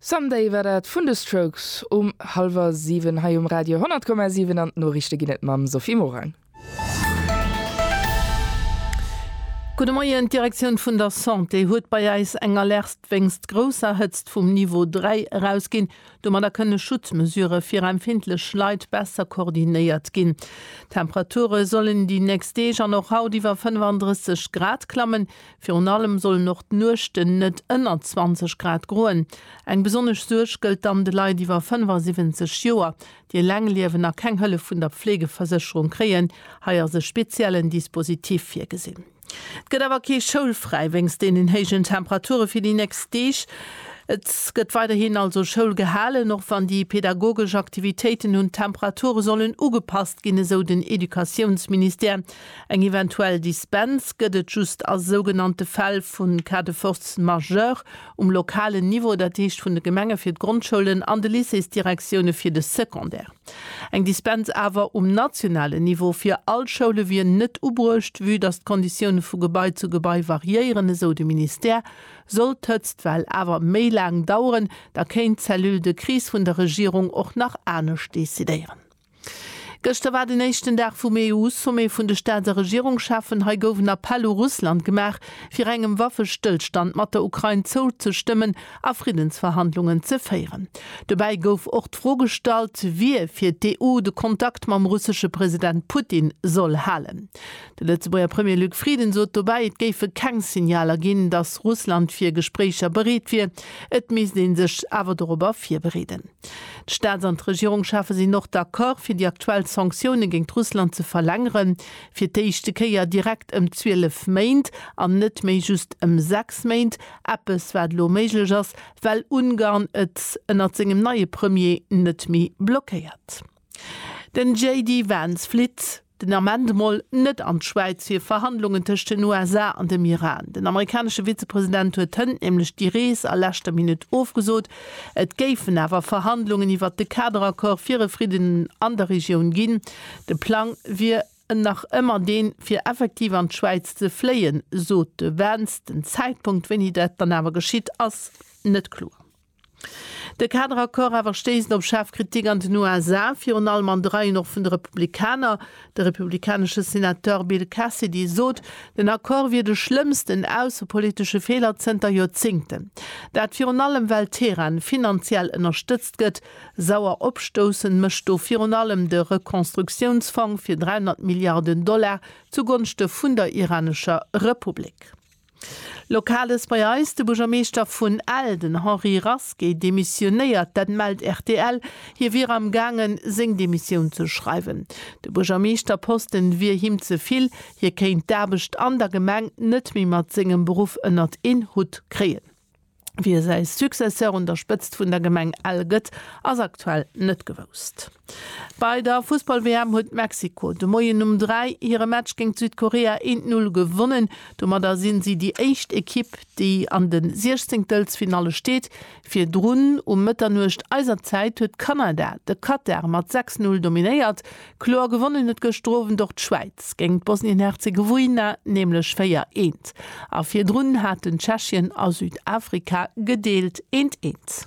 Someday war dat vun de Strokes um hallwer 7 hei um Radio 10,7 an d'Noriichte ginn et mam Sophie Morang. Gudde Moien, D'Direktioun vun der Santé huet bei eis eng Alerte wéinst grousser Hëtzt vum Niveau 3 erausginn. Domadder kënne Schutzmesurë fir empfindlech Leit besser koordinéiert ginn. D'Temperature sollen déi nächst Deeg an och haut iwwer 35 Grad klammen. Virun allem sollen och d'Nuechten net ënner 20 Grad groen. Eng besonnesch Suerg gëllt dann de Leit iwwer 75 Joer, déi eleng liewen a keng Hëllef vun der Pflegeversécherung kréien. Hei ass e speziellen Dispositif virgesinn. Et gëtt awer kee Schoulfräi wéinst deenen héijen Temperature fir déi nächst Deeg. Et gëtt weiderhin also Schoul gehalen, och wann déi pedagogesch Aktivitéiten un d'Temperature sollen ugepasst ginn, esou den Educatiounsministère. Eng eventuell Dispens gëtt et just a sougenannte Fäll vu cas de force majeure um lokalen Niveau, dat heescht vun de Gemenge fir d'Grondschoulen an de Lycéesdirektioune fir de Secondaire. Eng Dispens awer um nationalen Niveau fir all Schoule wier net ubruecht, vue datt d'Konditioune vu Gebai zu Gebai variéieren, esou de Ministère. Sollt d'Hëtztwell awer méi laang daueren, da kéint d'Cellule de crise vun der Regierung och nach anescht decidéieren. Gëschter war den éischten Dag vum EU-Sommet vun de Staats a Regierungscheffen. Hei gouf en Appell u Russland gemaach, fir engem Waffestëllstand mat der Ukrain zouzestëmmen a Friddensverhandlungen ze féieren. Dobäi gouf och d'Fro gestallt, wie fir d'EU de Kontakt mam russesche President Putin soll halen. De Lëtzebuerger Premier Luc Frieden sot dobäi, et géife keng Signaler ginn, datt Russland fir Gespréicher bereet wier. Et misst ee sech awer dorobber virbereeden. D'Staats an d'Regierungschefe sinn och d'Accord fir déi aktuell Sanktioune géint Russland ze verlängeren, fir d'éischte Kéier direkt ëm 12 Méint an net méi just ëm 6 Méint, eppes wat elo méiglech ass, well Ungarn et ënnert sengem neie Premier net méi blockéiert. Den JD Vance flitt. Den Ament mol net an d'Schwäiz fir Verhandlungen tëscht den USA an dem Iran. Den amerikanesche Vizepresident huet hënt nämlech déi Rees a leschter Minutt ofgesot. Et géifen awer Verhandlungen iwwert de Kaderaccord fir e Fridden an der Regioun ginn. De Plang wier nach ëmmer deen, fir effektiv an d'Schwäiz ze fléien, sot de Vance. Den Zäitpunkt, wéini dat dann awer geschitt, ass net kloer. De Kaderaccord awer stéisst op schaarf Kritik an den USA, virun allem an de Reien och vun de Republikaner. De republikanesche Senateur Bill Cassidy sot, den Accord wier de schlëmmsten aussepolitesche Feeler zënter Joerzéngten. Dat virun allem well Teheran finanziell ënnerstëtzt gëtt. Sauer opstoussend mécht do virun allem de Rekonstruktiounsfong fir 300 Milliarden Dollar zugonschte vun der iranescher Republik. Lokales bei eis, De Buergermeeschter vun Ell, den Henri Rasqué, demissionéiert. Dat mellt rtl. Hie wier am gaangen, seng Demissioun ze schreiwen. De Buergermeeschterposte wier him ze vill. Hie kéint d'Aarbecht an der Gemeng net méi mat sengem Beruff ënnert een Hutt kréien. Wie säi Successeur un der Spëtzt vun der Gemeng Ell gëtt, ass aktuell net gewousst. Bei der Fussball-WM huet Mexiko de Moien um 3 hire Match géint Südkorea een d'Null gewonnen. Domadder sinn si déi éischt Ekipp, déi an de Siechzéngtelsfinalle steet. Virdrun um Mëtternuecht eiser Zäit huet Kanada de Katar mat 6, 0 dominéiert. Kloer gewonnen huet gëschter Owend och d'Schwäiz géint d'Bosnien-Herzegowina, nämlech 4, eent. A virdrun haten Tschechien a Südafrika gedeelt eent, eent.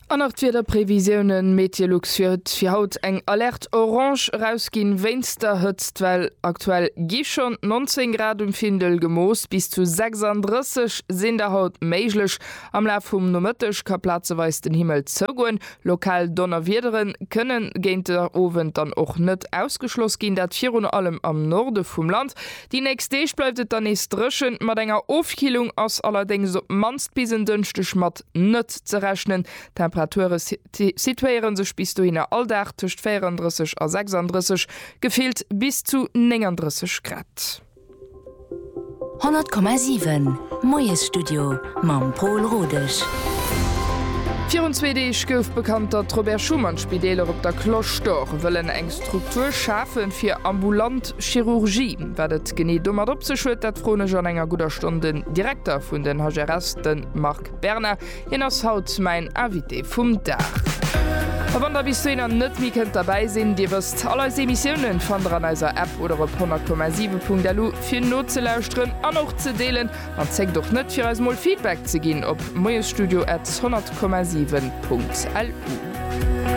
An nach d'Wiederprevisiounen, Meteolux huet fir haut eng Alerte orange erausginn wéinst der Hëtztwell. Aktuell gi schonn 19 Grad um Findel gemooss, bis zu 36 sinn der haut méiglech. Am Laf vum Nomëtteg ka plazeweis den Himmel zougoen, Lokal Donnerwiedere kënne géint de Owend dann och net ausgeschloss ginn, dat virun allem am Norde vum Land. Déi nächst Deeg bleift et dann nees dréchen, mat enger Ofkillung ass allerdéngs op d'mannst bis en Dënschdeg mat net ze rechnen. D'Temperature situéiere sech bis dohinner all Dag tëscht 34 a 36, gefillt bis zu 39 Grad. 100,7 Moiesstudio mam Pol Rodesch. Virun zwee Deeg gouf bekannt, datt d'Robert Schuman Spideeler op der Cloche d'Or wëllen eng Struktur schafe fir ambulant Chirurgie. Wat et genee domat op sech huet, dat froen ech an enger gudder Stonn den Direkter vun den HRS, de Marc Berna. Hien ass haut mäin Invité vum Dag. A wann der bis dohinner net méi kënnt derbäi sinn, Dir wësst, all eis Emissiounen fannt der an eiser App oder op 100,7.lu fir nozelauschteren an och ze deelen. An zéckt och net fir eis mol Feedback ze ginn op moiesstudio at 100,7.lu.